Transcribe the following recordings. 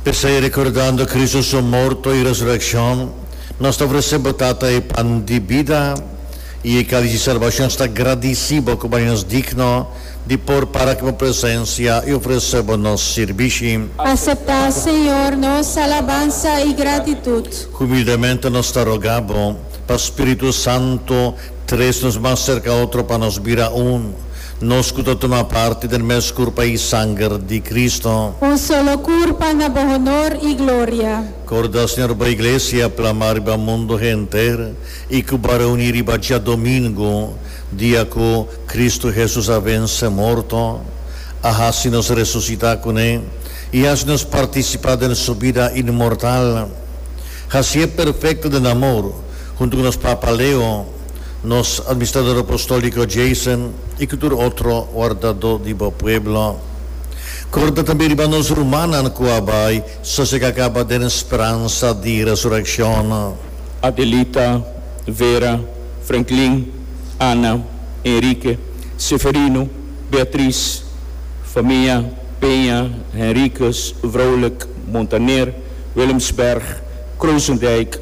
P'esei, rekordando Kristu su morto i resurekshon, nos ta ofresé bo Tata e pan di bida i e kális di salbashon. Sta gradisí bo ku bai nos digno di por para aki bo presensia i ofresé bo nos sirbishi. Aseptá, Señor, nos alabansa i gratitut. Humildemente nos ta rogá bo pa spiritu santu. Tres nos mas serka otro pa nos bira un, nos ku ta tuma parti den mes kurpa i sanger di Kristu. Un solo kurpa na bo honor i gloria. Korda, Señor, bo iglesia plamá riba mundu henter i ku bo a reuní riba djadomingu, dia ku Kristu Hesus a vense morto, a hasi nos resusitá kuné i hasi nos partisipá den su bida inmortal. Hasié perfekto den amor. Huntu ku nos Papa Leo, nos Administrador Apostolíko Jason i ku tur otro wardadó di bo pueblo. Korda tambe riba nos rumannan ku a bai sosegá kaba den speransa di resurekshon. Adelita, Vera, Franklin, Ana, Enrique, Seferino, Beatriz, famia, Peña, Henriquez, Vrolijk, Montaner, Willemsberg, Croosendijk,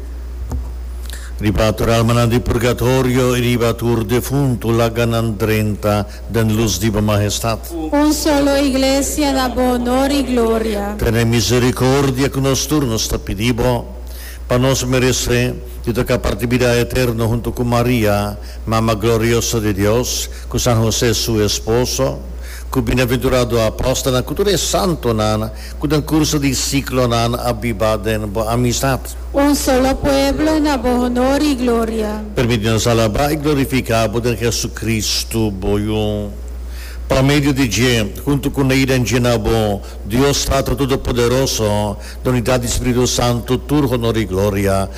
Riba tur almanan di purgatorio i riba tur defuntu laganan drenta den lus di bo Mahestat. Un solo Iglesia da bo onor i gloria. Tene misericordia cu nos tur, nos ta pidi bo, pa nos merece di toca parti bida eterno hunto cu Maria, Mama gloriosa di Dios, cu San Jose su esposo, cu bienaventurado apostelnan, cu tur e santonan, Cu den curso di ciclo nan a biba den bo amistad. Un solo pueblo na bo honor y gloria. Permiti nos alaba y glorifica bo den Jesucristo, bo Hijo. Pa medio di dje, hunto cu Ney den dje na bo, Dios Tato Todopoderoso, na unidad di Spiritu Santo, tur honor y gloria.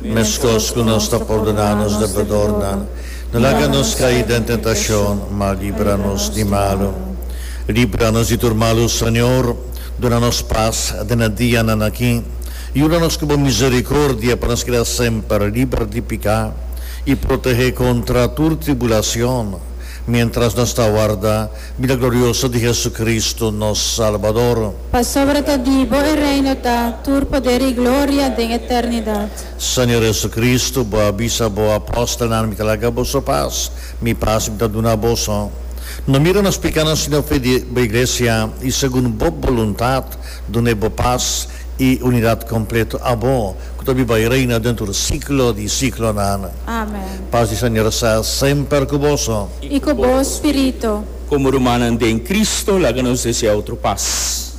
Meskos ku nos ta pordoná nos debedornan, no laga nos kai den tentashon, ma libra nos di malu. Libra nos di tur malu, Señor, duna nos pas den e dianan aki. Yuda nos ku bo miserikordia pa nos keda semper liber di piká i protehé kontra tur tribulashon miéntras nos ta warda Bida glorioso di Jesucristo nos Salbador. Pasobra ta di bo e reino ta tur poder i gloria den eternidad. Señor Jesucristo, bo a bisa bo apostelnan, Mi ta laga boso pas, Mi pas Mi ta duna boso. No mira nos picánan sino fe di bo Iglesia, i segun bo boluntad duna e bo pas i unidad completo a bo, cu ta biba i reina den tur siglo di siglonan. Amen. Pas di Señor sa semper cu boso. i ku bo spiritu. Komo rumannan den Kristu, laga nos desea otro pas.